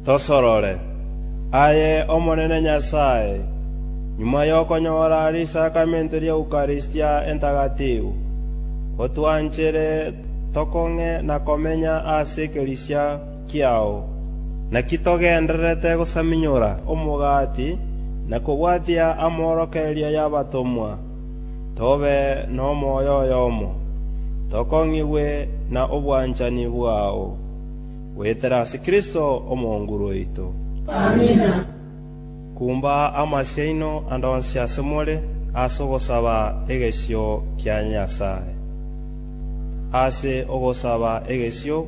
Tosorore, aye Omonene Nyasae, nyuma y'okonyora risakramente ri'Eukaristia Entagatifu, otwanchere tokong'e na komenya ase ekeresia kiao. Naki togendererete gosaminyora omogati na kobwatia amorokererio y'abatomwa, tobe nomoyo oyomo, tokong'igwe na obwanchani bwao, goetera ase Kristo Omonguru oito. Amina. Kumba amasio aino ande onsi ase more ase ogosaba egesio kia Nyasae. Ase ogosaba egesio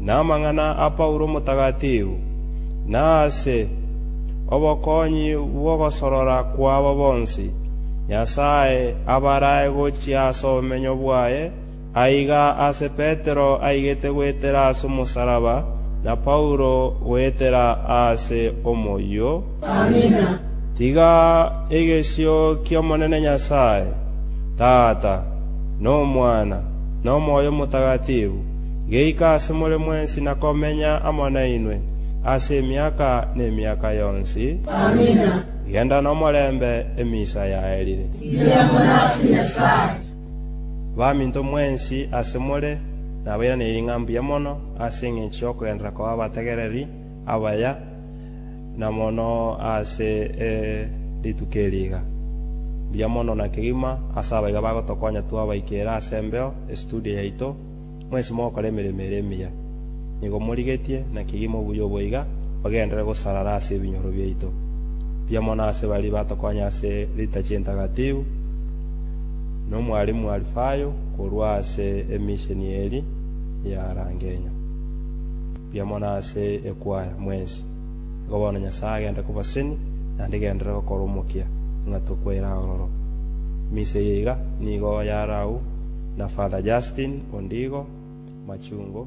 Namang'ana a Paulo omotakatifu, na ase obokonyi bw'ogosorora kwabo bonsi, Nyasae abarae gochia ase obomenyo bwaye, aiga ase Petero aigete goetera ase omosaraba, na Paulo goetera ase omoyio. Amina. Tiga egesio ki'Omonene Nyasae, Tata, na Omwana, na Omoyo Omotakatifu, geika ase more mwensi na komenya amo nainwe ase emiaka nemiaka yonsi. Amina. Genda nomorembe, emisa yaerire. Riambo nase Nyasae. Baminto mwensi ase more nabairanerie ng'a mbuya mono ase engencho y'okogenderera koba abategereri abaya, na mono ase rituko eri iga. Mbuya mono na kegima ase abaiga bagotokonya twabaika ere ase embeo, estudio yaito, Mwensi mogokora emeremo ere emiya, nigo morigetie, na kegima obuya obo iga ogenderere gosarara ase ebinyoro biaito. Mbuya mono ase baria batokonya ase ritachi entagatifu, nomwarimu Alifayo korwa ase emisheni eri ya Rangenya. Mbuya mono ase ekwaya mwensi. Igo bono Nyasae agende kobaseni, naende genderere gokora omokia, ng'a tokwaire aororo. Eminsa eye iga nigo yare agwo na Father Justin onde igo, Machungo.